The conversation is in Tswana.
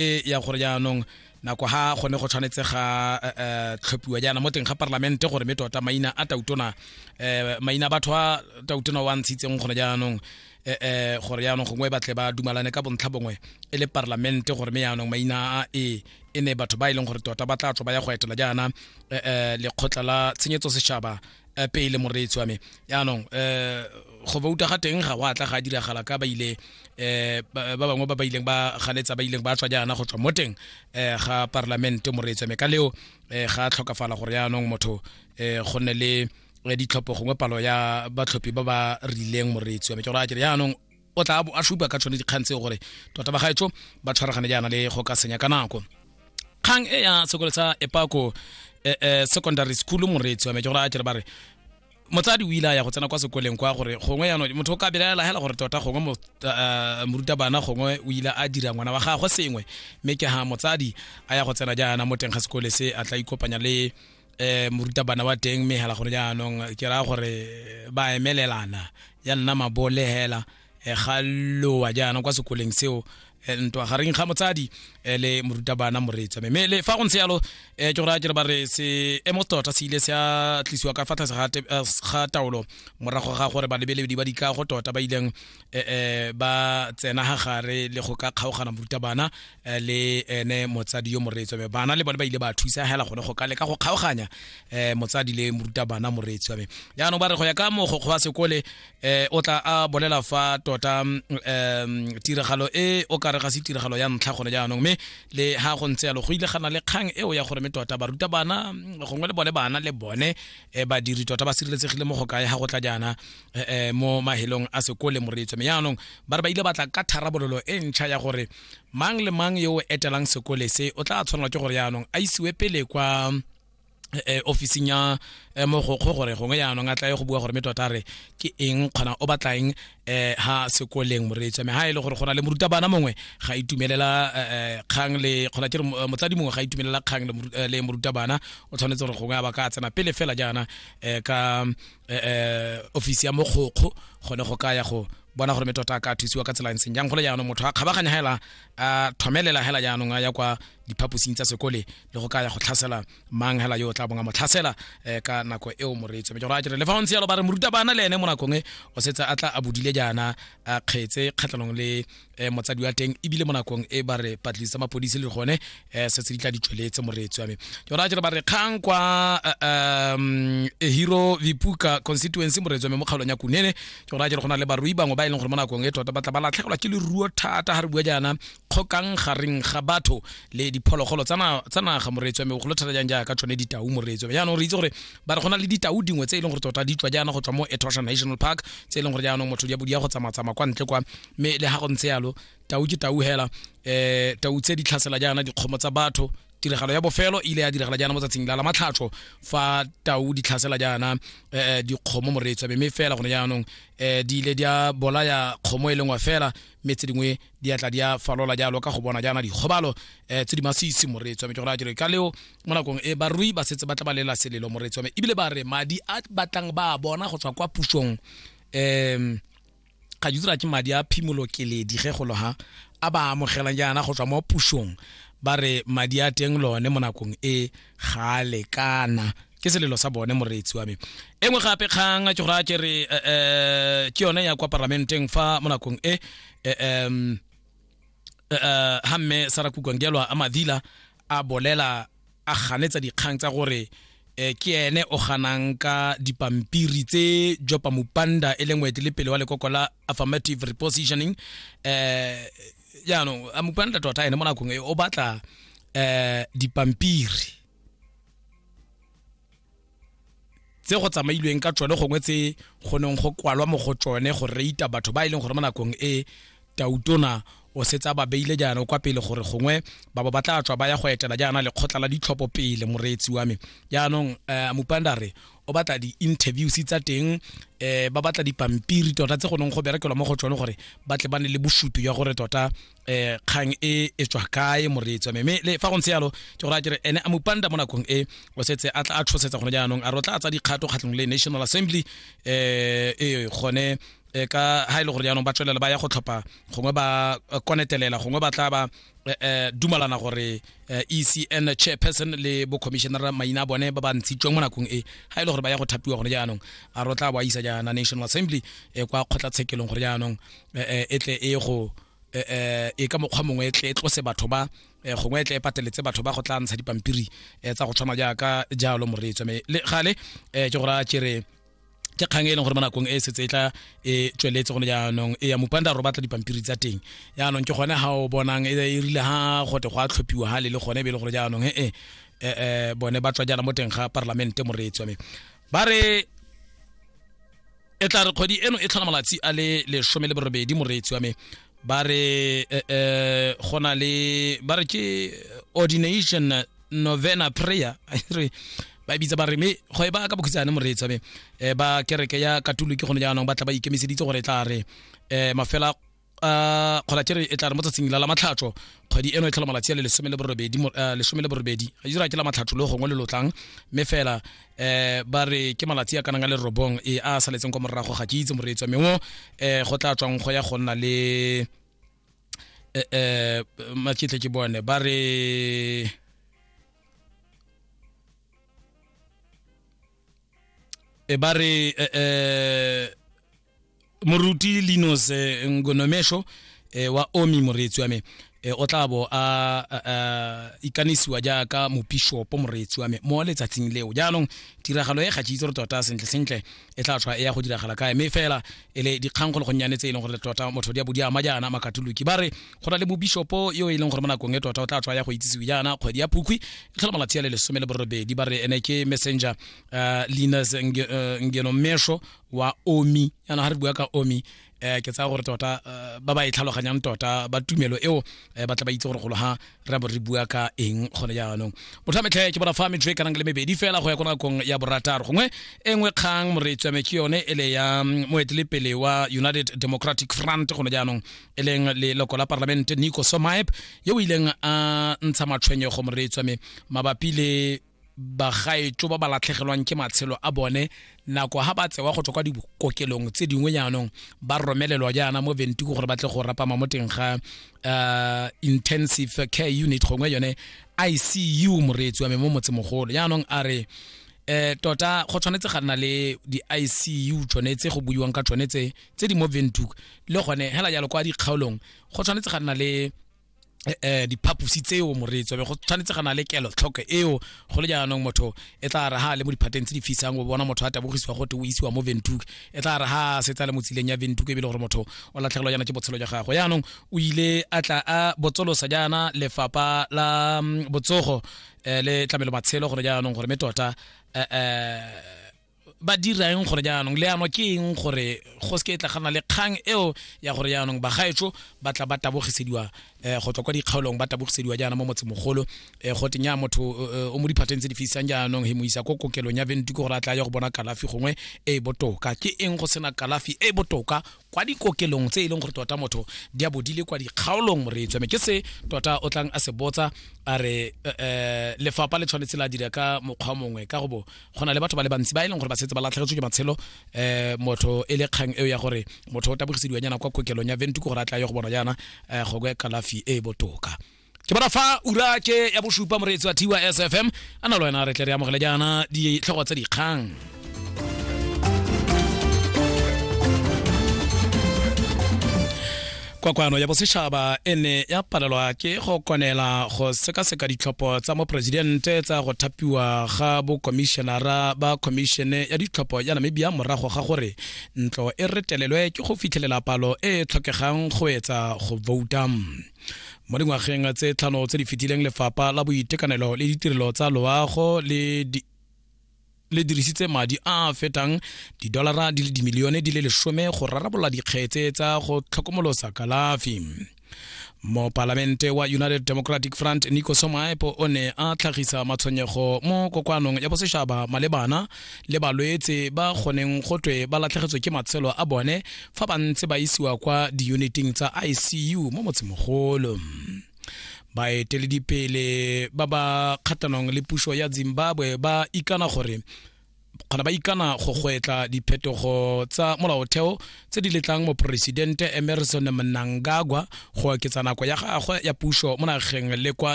e ya gore jaanong nako ha gone go tshwanetse ga eh, eh, tlhophiwa jaana mo teng ga parlamente gore mme tota maina a tautona eh, maina a batho a tautona wa ntshitseng gone jaanong eh, eh, gore jaanong gongwe ba tle ba dumalane ka bontlha bongwe e le parlamente gore mme jaanong maina a e e ne batho ba e leng gore tota ba tla tswa ba ya go etela jaana eh, eh, lekgotla la tshenyetso setšhaba eh, pele moreetsi wa me yaanong um go bouta ga teng ga wa tla ga diragala ka ba ile um ba bangwe ba ba ileng ba ganetsa ba ileng ba tswa jaana go tswa mo teng um ga parlamente moreetsi wa me ka leo um ga tlhokafala gore yaanong motho um go nne le ditlhopho gongwe palo ya batlhophi ba ba rileng moreetsi wa me ke gore a kere yaanong o tla bo a supa ka tsone dikgang tseo gore tota ba gaetsho ba tshwaragane jaana le go ka senya ka nako kgang e ya sekolo sa epako eh, eh, secondary school moreetsi wa me ke gore a kere ba re motsadi o ile a ya go tsena kwa sekoleng kwa gore gongwe yanong motho o ka belaela hela gore tota gongwe mo- eh, morutabana gongwe o ile a dira ngwana wa gagwe sengwe mme ke ha motsadi a ya go tsena jaana mo teng ga sekole se a tla ikopanya le eh morutabana wa teng mme hela gore jaanong ke raya gore ba emelelana ya nna mabole hela eh, ga lowa jaanong kwa sekoleng seo eh, ntwa gareng ga motsadi eh, le morutabana moreetswa mme le fa go ntse yalo eh, ke go raya kere ba re seemo tota se ile se a tlisiwa ka fa tlase ga te- eh, ga taolo morago ga gore balebeledi ba dikago tota ba ileng eh, eh, ba tsena ga gare le go ka kgaogana moruta bana eh, le ene motsadi yo moreetswa me bana le bone ba ile ba thusa hela gone go ka leka go kgaoganya eh, motsadi le moruta bana moreetswa me jaanong ba re go ya ka mogokgo wa sekole eh, o tla a bolela fa tota mm, em, tiragalo e o ka re ga se tiragalo ya ntlha gone jaanong mme le ha go ntse yalo go ile gana le kgang eo ya gore me tota baruta bana mm, gongwe le bone bana le bone eh, badiri tota ba sireletsegile mo go kae ga go tla jaana eh, eh, mo mahelong a sekole moreetso me yaanong ba re ba ile batla ka tharabololo e ntšha ya gore mang le mang yo o etelang sekole se o tla tshwanelwa ke gore yaanong a isiwe pele kwa eh, eh, officing ya eh, mogokgo gore gongwe yaanong a tlae go bua gore me tota re ke eng kgona o batla eng eh, ha sekoleng moreetso me ha e le gore go na le morutabana mongwe ga a itumelela eh, eh, kgang le kgona ke re mo- eh, motsadi mongwe ga a itumelela kgang le moru- eh, le morutabana o tshwanetse gore gongwe a ba ka tsena pele fela jaana eh, ka eh, eh, office ya mogokgo gone go ka ya go bona gore metota a ka thusiwa ka tsela e ntseng jang gole jaanong motho a kgabaganya hela a thomelela hela jaanong a ya kwa diphaposing tsa sekole le go ka ya go tlhasela mang hela yo o tla bonga mo tlhasela eh, ka nako eo moreetso mme ke gore a kere le fa o ntse yalo ba re morutabana le ene mo nakong e o setse a tla a bodile jaana a kgetse kgatlhanong le eh, motsadi wa teng ebile mo nakong e ba re patlisa mapodisi le gone eh, se se di tla di tšweletse moreetsi wa me jona jere ba re kgang kwa eh, um, eh, hero vipuka constituency moreetsi wa me mo kgaolong ya kunene jona jere go na le barui bangwe ba e leng gore mo nakong e tota ba tla ba latlhegelwa ke leruo thata ga re bua jaana kgokang gareng ga batho le diphologolo tsa naga moreetsi wa me golo thata jang jaaka tsone ditau moreetsi wa me jaanong re itse gore ba re go na le ditau dingwe tse e leng gore tota di tswa jaana go tswa mo etosha national park tse e leng gore jaanong motho di a go tsamatsama kwa ntle kwa mme le ga go ntse yalo tau ke tau hela um tau tse di tlhasela jaana dikgomo tsa batho tiragalo ya bofelo ile ya diragala jaana mo tsatsing la la matlhatsho fa tau di tlhasela jaana um dikgomo moreetsa mme fela gone jaanong um di ile di a bolaya kgomo e lengwe fela mme tse dingwe di atla di a falola jalo ka go bona jaana dikgobalo um tse di masisi moreetsa mme ke gore a jere ka leo mo nakong e barui ba setse ba tla ba lela selelo moreetsa mme ebile ba re madi a batlang ba a bona go tswa kwa pusong um ga di dira ke madi a phimolo keledi ge golo ha a ba amogelang jaana go tswa mo pusong ba re madi a teng lone mo nakong e ga a lekana ke selelo sa bone moreetsi wa me e nngwe gape kgang ke gore a ke re eh, eh, ke yone ya kwa parlamenteng fa mo nakong e eh, em, eh, eh, ha mme sara kukangelwa a madila a bolela a ganetsa dikgang tsa gore eh, ke ene o ganang ka dipampiri tse jopa mupanda e leng moetelepele wa lekoko la affirmative repositioning eh jaanong a mupanda tota ene mo nakong e o batla eh dipampiri tse go tsamailweng ka tsone gongwe tse go neng go kwalwa mo go tsone go reita batho ba e leng gore mo nakong e tautona o setse a ba beile jaana kwa pele gore gongwe ba ba batla tswa ba ya go etela jaana lekgotla la ditlhopho pele moreetsi wa me jaanong um mopandare o batla di-interviews tsa teng um ba batla dipampiri tota tse go neng go berekelwa mo go tsone gore ba tle ba ne le bosupi jwa gore tota eh kgang e e tswa kae moreetsi me me le fa go ntse yalo ke go raya kere ene a mopanda mo nakong e o setse a tla a tshosetsa gone jaanong a re o tla tsa dikgato kgatlhong le national assembly eh e gone eh, ka ha ile e gore jaanong ba tswelela ba ya go tlhopha gongwe ba eh, konetelela gongwe ba tla ba eh, eh, dumalana gore eh, ecn chairperson le bo commissioner maina a bone ba ba ntshitsweng mo nakong e ha ile e gore ba ya go thapiwa gone jaanong a re o tla ba isa jaana national assembly eh, kwa kgotlatshekelong gore jaanong eh, e tle e go eh, e ka mokgwa mongwe tle e tlose batho ba gongwe e tle e pateletse batho ba go tla ntsha dipampiri tsa go tshwana jaaka jalo moreetswa me le gale ke go raya kere ke kgang e leng gore mo nakong e setse e tla e tsweletse gone jaanong e ya mopanda ro batla dipampiri tsa teng jaanong ke gone ga o bonang e, e rile ga gote go a tlhophiwa ga le le gone e be e le gore jaanong e, e, e bone ba tswa jaana mo teng ga parlamente moreetswa me ba re e tla re kgwedi eno e tlhola malatsi a le lesome le borobedi moreetsi wa me ba re eh, eh, go na le ba re ke ordination novena prayer re ba bitsa ba re me go e ba ka bokhutsane moreetsi wa me eh, ba kereke ya katoliki gone jaanong ba tla ba ikemiseditse gore e tla re eh, mafela uh, kgolatere e tla re mo tsatsing la la matlhatso kgwedi eno e tlhola malatsi a le lesome le borobedi uh, lesome le borobedi a dira ke la matlhatso le gongwe le lotlang mme fela eh ba re ke malatsi a kanang a le robong e a saletseng kwa morago ga ke itse moreetswa mme o eh go tla tswang go ya go nna le eh, eh maketle ke bone ba re e ba re eh, eh moruti linos eh, ngonomesho eh, wa omi moreetsi wa me eh, o tla bo a a- a- ikanisiwa jaaka mopishopo moreetsi wa me mo letsatsing leo jaanong tiragalo e ga ke itse gore tota sentle sentle e tla tlhwa e ya go diragala kae mme fela e le dikgang go le gonnyane tse e leng gore tota motho di a bo di ama jaana makatoloki ba re go na le mobishopo yo e leng gore mo nakong e tota o tla tlhwa ya go itsisiwe jaana kgwedi ya phukwi e tlhola malatsi a le lesome le borobedi ba re ene ke messenger uh, linas Nge- eh, ngeno mesho wa omi yana ga re bua ka omi eh ke tsaya gore tota eh, ba ba e tlhaloganyang tota ba tumelo eo eh, ba tla ba itse gore golo ha re bo re bua ka eng gone jaanong motho a metlhe ke bona fa metso e kanang le mebedi fela go ya ko nakong ya borataro gongwe e nngwe kgang moretswame ke yone e le ya mm, moetelepele wa united democratic front gone jaanong e leng leloko la parlamente nico somaep yo o ileng a ntsha matshwenyego moretswame mabapi le bagaetso ba ba latlhegelwang ke matshelo a bone nako ha ba tsewa go tswa kwa dikokelong tse dingwe jaanong ba romelelwa jaana mo ventiko gore ba tle go rapama mo teng ga uh, intensive care unit gongwe yone icu moreetsi wa me mo motsemogolo jaanong a re eh tota go tshwanetse ga nna le di-icu tsone tse go buiwang ka tsone tse tse di mo ventuk le gone hela jalo kwa dikgaolong go tshwanetse ga nna le eh, eh diphaposi tseo moreetso be go tshwanetse ga na le kelo tlhoko eo go le jaanong motho e tla re ha le mo diphateng tse di fisang o bona motho a tabogisiwa gote o isiwa mo ventuke e tla re ha setsa le mo tsileng ya ventuke ebile gore motho o latlhegelwa jaana ke botshelo jwa gagwe jaanong o ile a tla a botsolosa jaana lefapa la mm, botsogo eh, le tlamelo matshelo gore jaanong gore me tota eh, eh ba dira eng gore jaanong leano ke eng gore go se ke tla gana le kgang eo ya gore jaanong bagaetsho ba tla ba tabogisediwa um go tswa kwa dikgaolong ba tabogisediwa jaana mo motsemogolo um go tenya motho eh, o mo diphateng tse di fisang jaanong he mo isa ko kokelong ya ventuke gore a tla ya go bona kalafi gongwe e e botoka ke eng go sena kalafi e e botoka kwa dikokelong tse e leng gore tota motho di a bo di le kwa dikgaolong re tsweme ke se tota o tlang a se botsa a re eh, eh, lefapha le tshwanetse la dira ka mokgwa mongwe ka go bo go na le batho ba le bantsi ba e leng gore ba setse ba latlhegetswe ke matshelo eh, motho e le kgang eo ya gore motho o tabogisediwa nyana kwa kokelong ya ventuko gore a tla ye go bona jaana eh, go kwe kalafi e e botoka ke bona fa ura ke ya bosupa moreetsi wa tiwa sfm a na le wena re tle re amogele jaana ditlhogo tse dikgang kwakwano ya bosetšhaba e ne ya palelwa ke go konela go sekaseka ditlhopho tsa moporesidente tsa go thapiwa ga bokomišenara ba khomišene ya ditlhopho ya namibia morago ga gore ntlo e retelelwe ke go fitlhelela palo e e tlhokegang go etsa go vouta mo dingwageng tse tlhano tse di fetileng lefapha la boitekanelo le ditirelo tsa loago le di le dirisitse madi a a fetang didolara di le dimilione di le lesome go rarabolola dikgetse tsa go tlhokomolosa kalafi mopalamente wa united democratic front nico somaepo o ne a tlhagisa matshwenyego mo kokoanong ya bosetšhaba malebana le balwetse ba goneng go twe ba latlhegetswe ke matshelo a bone fa ba ntse ba isiwa kwa diyuniting tsa icu mo motsemogolo baeteledipele ba ba kgatlhanong le puso ya zimbabwe ba ikana gore kgona ba ikana go gwetla diphetogo tsa molaotheo tse di letlang moporesidente emerson mnangagwa go oketsa nako ya gagwe ya puso mo nageng le kwa